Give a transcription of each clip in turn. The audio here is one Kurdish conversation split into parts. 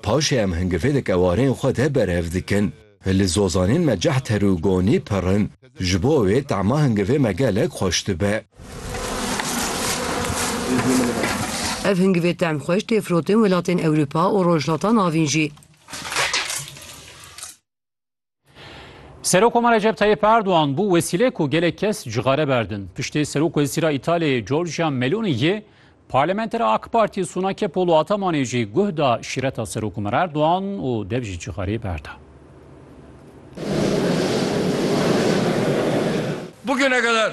Paşê em hingivêleke warên xwe de berev dikin. Li zozanên me cehter û gonî pir in. Ji bo wê tema hingivê me gelek xweş dibe. Ev hingivê tem xweş tê firotên welatên Ewropa û Rojhilata Navîn jî. Serokoma Recep Tayyip Erdoğan bu wesîle ku gelek kes cixare berdin. Piştê Serok Wezîra İtalyayê Giorgia Meloni yê Parlamentera AK Parti Suna Kepolo Atamanê jî guh da şîreta Serokoma Erdoğan û dev jî cixarê berda. Bugüne kadar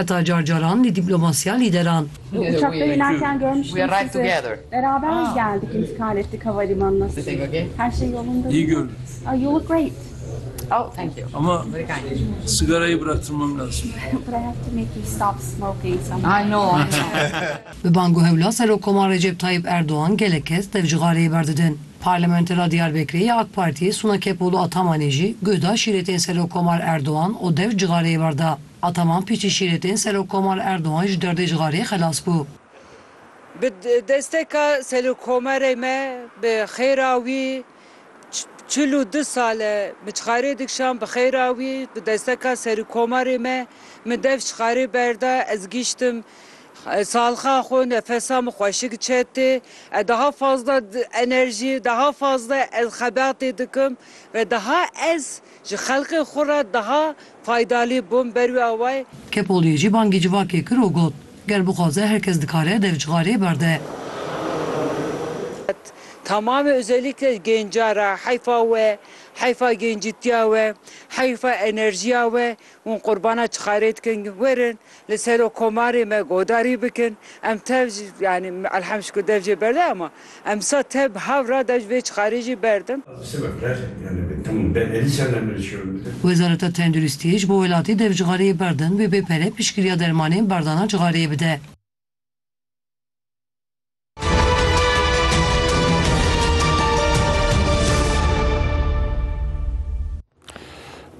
Heta car caran li dîplomasiya lîderan. Bi bang û hewla Serokkoman Recep Tayyîp Erdogan gelek kes tevcixareyê berdidin. Parlamentera Diyarbekirê ya AK Partiyê Suna Kepolo Atamanê jî guh da şîretên Serokkomar Erdogan û dev cixareyê berda. Ataman pîçî şîrê tên Serokkomal Erdogan ji derdê cixarê xelas bû. Bi desteka Serokomerê me bi xêra wî çil û du sal e min cixarê dikişand bi xêra wî bi desteka Serokomerê me min dev cixarê berda ez gîştim salxa xwe nefesa min xweşik çet tê ez daha fazla enerjî daha fazla ez xebatê dikim ve daha ez Ji xelkê xwe re daha faydalî bûm berwî awayê. Kepolyê jî bangî civakê kir û got, Ger bixwaze her kes dikare dev cixarê berde. Tamamê ozêlîke gênca re heyfa we, heyfa gêncîtiya we, heyfa enerjiya we Hûn qurbana çi karê dikin? Werin li serokomarê me godarî bikin. Em tev jî yanî elhemd şikir dev jê berde ama em disa tev bi hev re dev ji vê çi karê jî berdin. Wezareta Tenduristiyê ji bo welatî dev cixareyê berdin, wê bê pere piştgiriya dermanên berdana cixareyê bide.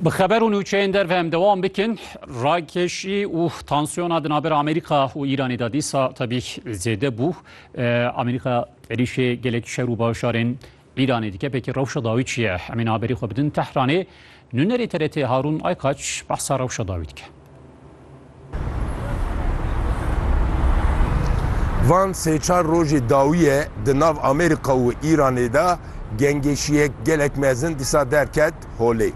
Bi xeber û nûçeyên derve em dewam bikin rakeşî û tansiyona di navbera Amerîka û Îranê de dîsa tebî zêde bû. Amerîka êrîşê gelek şer û bajarên Îranê dikepekî rewşa dawî çi ye? Em ê niha berî xwe bidin Tehranê. Nûnerê TRT'ê Harûn Aykaç behsa rewşa dawî dike. Van sê çar rojê dawî ye di nav Amerîka û Îranê de gengêşiyek gelek mezin dîsa derket. Holê.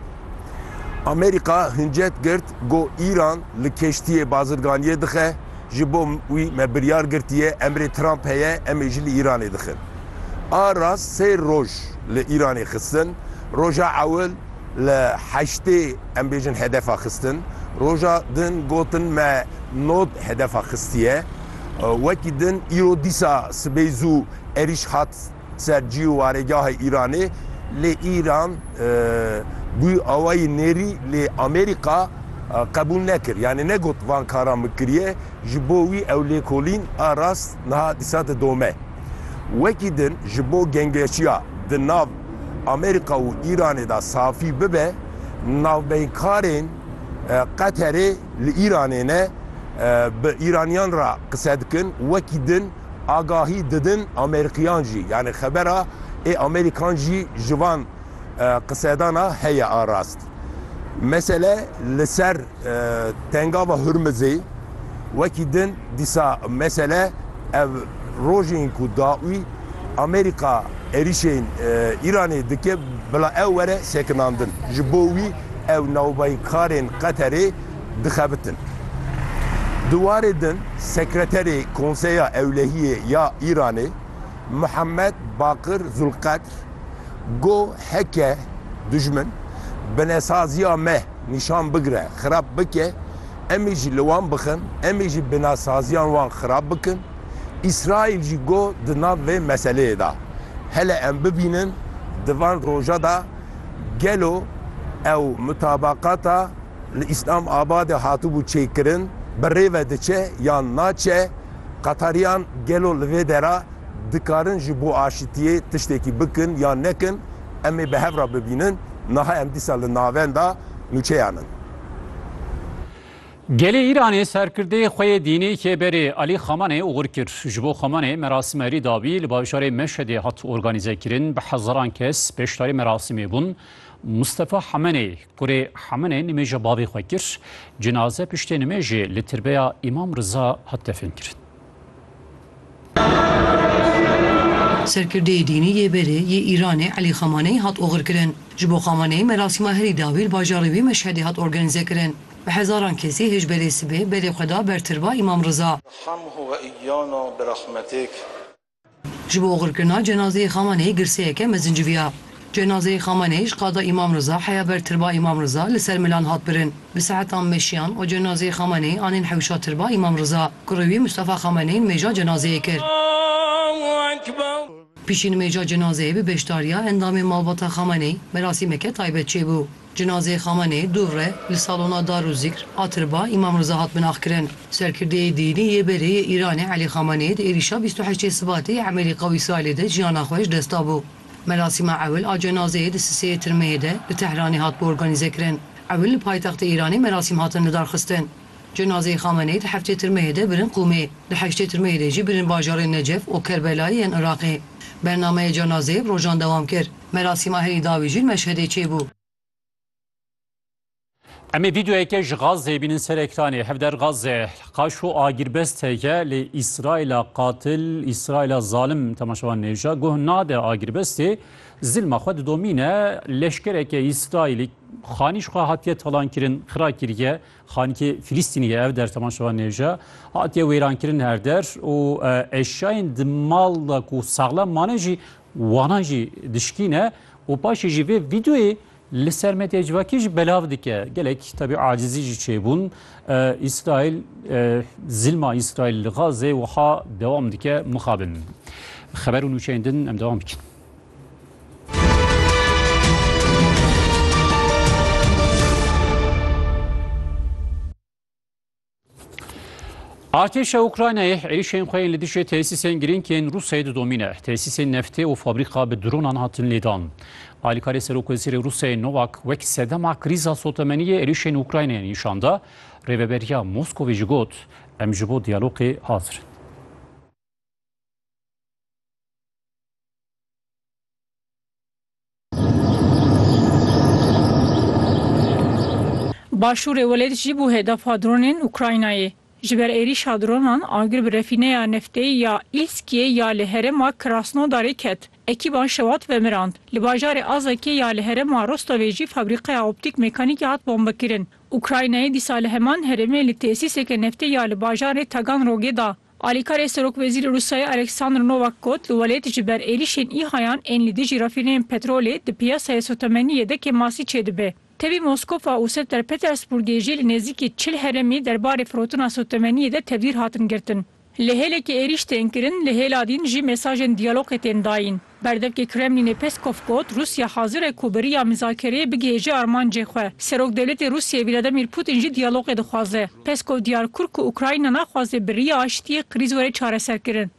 Amerîka hincet girt go Îran li keştiyê bazirganiyê dixe, ji bo wî me biryar girtiye, emrê Trump heye, em ê jî li Îranê dixin. A rast sê roj li Îranê xistin, roja ewil li heştê em bêjin hedefa xistin, roja din gotin me nod hedefa xistiye. Wekî din îro dîsa sibê zû êrîş hat. ser cî û warêgahê Îranê lê Îran bû awayî nêrî lê Amerîka qebûl nekir yanî negot van karan min kiriye ji bo wî ew lêkolîn a rast niha dîsa didome. Wekî din ji bo gengeşiya di nav Amerîka û Îranê de safî bibe navbeynkarên Qeterê li Îranê ne bi Îranîyan re qise dikin wekî din, Agahî didin Amerîkiyan jî yanî xebera ê Amerîkan jî ji van qisedana heye a rast. Mesele li ser tengava Hurmizê wekî din dîsa mesele ev rojên ku dawî Amerîka êrîşên Îranê dike bila ew were sekinandin. Ji bo wî ew navbayî karên Qeterê dixebitin. Di warê din Sekreterê Konseya Ewlehiyê ya Îranê Muhammed Baqir Zulqedr got heke dijmin binesaziya me nîşan bigire xirab bike em ê jî li wan bixin, em ê jî binesaziyan wan xirab bikin. Îsraîl jî got di nav vê meseleyê de hele em bibînin di van roja de, Gelo ew mutabaqata li Îslam Abadê hatibû çêkirin bi rê ve diçe yan naçe? Qetariyan gelo li vê dera dikarin ji bo aşitiyê tiştekî bikin yan nekin? Em ê bi hev re bibînin. Niha em dîsa li navenda nûçeyan in. Gelê Îranê serkirdê xwe yê dînî Kêberê Alî Xamanê oxir kir. Ji bo Xamanê merasîme rî dabî li bajarê Meşedê hat organîzekirin. Bi hezaran kes beşdarî merasîmê bûn. Mustefa Hamenê kurê Hamenê nimêja bavê xwe kir. Cinaze piştê nimêjê li tirbeya Îmam Riza hat definkirin. Serkirdeyê dînî yê berê yê Îranê Elî Xamaneyî hat oxirkirin. Ji bo Xamaneyî merasîma herî dawî li bajarê wî Meşhedê hat organîzekirin. Bi hezaran kesî hêj belê sibê berê xwe da ber tirba Îmam Riza. Ji bo oxirkirina cenazeyê Xamaneyî girseyeke mezin civiya. Cenazeyê Xameneî ji Qada Îmam Riza heya ber Tirba Îmam Riza li ser Milan hat birin. Bi saetan meşiyan û cenazeyê Xameneî anîn hewşa Tirba Îmam Riza ku rûyî Mustafa Xameneî nimêja cenazeyê kir. Piştî nimêja cenazeyê bi beşdariya endamên malbata Xameneî merasîmeke taybet çêbû. Cenazeyê Xameneî dû re li Salona Dar û Zîkr a Tirba Îmam Riza hat binaxkirin. Serkirdeyê dînî yê berê yê Îranê Elî Xameneî di êrîşa bîst û heştê Sibatê yê Emelî Qewî Îsraîlê de jiyana xwe ji dest dabû. Merasîma ewil a cenazeyê di Siseyê Tirmeyê de li Tehranê hat bi organîzekirin. Ewil li paytextê Îranê merasîm hatin lidarxistin. Cenazeyê Xameneî di heftê Tirmeyê de birin Qûmê. Di heştê Tirmeyê de jî birin bajarên Necef û Kerbelayê yên Iraqê. Bernameyê cenazeyê bi rojan dewam kir. Merasîma herî dawî jî li Meşhedê çêbû. Em ê vîdeoyeke ji Gazeyê bînin ser ekranê. Hevder Gaze, qaş û agîrbest heke lê Îsraîla qatil, Îsraîla zalim temaşevan nêja. Guh nade agîrbestê zilma xwe didomîne. Leşkereke Îsraîlî xanî ji xwe hatiye talankirin, xira kiriye. Xanikê Filîstînî ye ev der temaşevan nêja. Hatiye wêrankirin her der û eşyayên di mal de ku saxlem mane jî wanan jî dişkîne û paşê jî vê vîdeoyê Li ser medyaya civakî jî belav dike. Gelek tevî acizî jî çêbûn. Îsraîl zilma Îsraîl li Gazê wiha dewam dike mixabin. Xeber û nûçeyên din em dewam bikin. Artêşa Ukraynayê êrişên xwe yên li dijî tesîsên girîng yên Rûsyayê didomîne. Tesîsên neftê û fabrîka bi dronan hatin lêdan. Alîkarê Serokwezîrê Rûsyayê Nowak wek sedema krîza sotemeniyê êrişên Ukraynayê nîşan da. Rêveberiya Moskowê jî got, Em ji bo diyalogê hazir in. Başûrê welêt jî bû hedefa dronên Ukraynayê. Ji ber êrîşa dronan agir bi refîneya neftê ya Îlskiyê ya li herêma Krasnodarê ket. Ekîban şewat vemirand. Li bajarê Azekê ya li herêma Rostovê jî fabrîqeya optîk mekanîkê hat bombekirin. Ukraynayê dîsa li heman herêmê li tesîseke neftê ya li bajarê Taganrogê da Alîkarê serokwezîrê Rûsyayê Oleksandr Nowak got, Li welêt ji ber êrîşên îhayan ên li dijî refîneyên petrolê di piyasayê sotemenî yedekê masî çêdibe. Tevî Moskofa û Senter Petersburgê jî li nêzîkî çil heremî derbarê firotina sotemeniyê de tevdîr hatin girtin. Li hêlekê êrîş tên kirin, li hêla dîn jî mesajên diyalogê tên dayîn. Berdevkê Kremlînê Peskov got, Rûsya hazir e ku bi riya mizakereyê bigihêje armancê xwe. Serokdewletê Rûsyayê Vladimir Putin jî diyalogê dixwaze. Peskov diyar kur ku Ukrayna naxwaze bi riya aştiyê krîz were çareserkirin.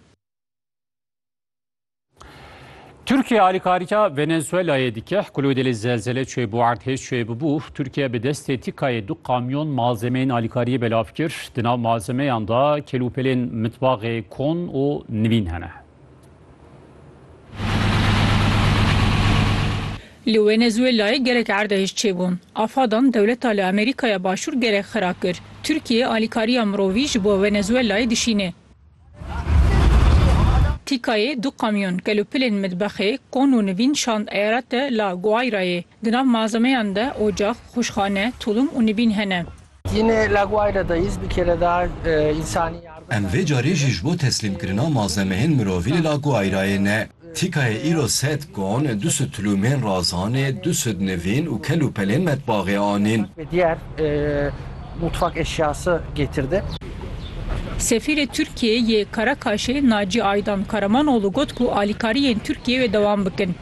Tirkiye alîkarîya Venezuelayê dike, Kulûdêlê zelzele çûyê bo erdhêj çûyê bibû, Tirkiye bi destê tîkayê du kamyon malzemeyên alîkariyê belav kir, di nav malzemeyan de kelûpelên mitbaxê kon û nivîn hene. Li Wenezuelayê gelek erdhej çêbûn. Afadan dewleta li Amerîkaya Başûr gelek xira kir. Tirkiye alîkariya mirovî ji bo Wenezuelayê dişîne. Tîkayê du kamyon gelo pilên mitbexê, kon û nivîn şand Eyarete La Guayrayê. Di nav malzemeyan de ocax, xwişxane, tulum û nivîn hene. Em vê carî jî ji bo teslîmkirina malzemeyên mirovî li Laguairayê ne. Tîkayê îro sed gon, du sud tulûmên razanê, du sud nivîn û kel û pelên metbaxê anîn. Sefîrê Tirkiyeyê yê Karakaşê Naci Aydan Karamanoglu got ku alîkariyên Tirkiyeyê wê dewam bikin.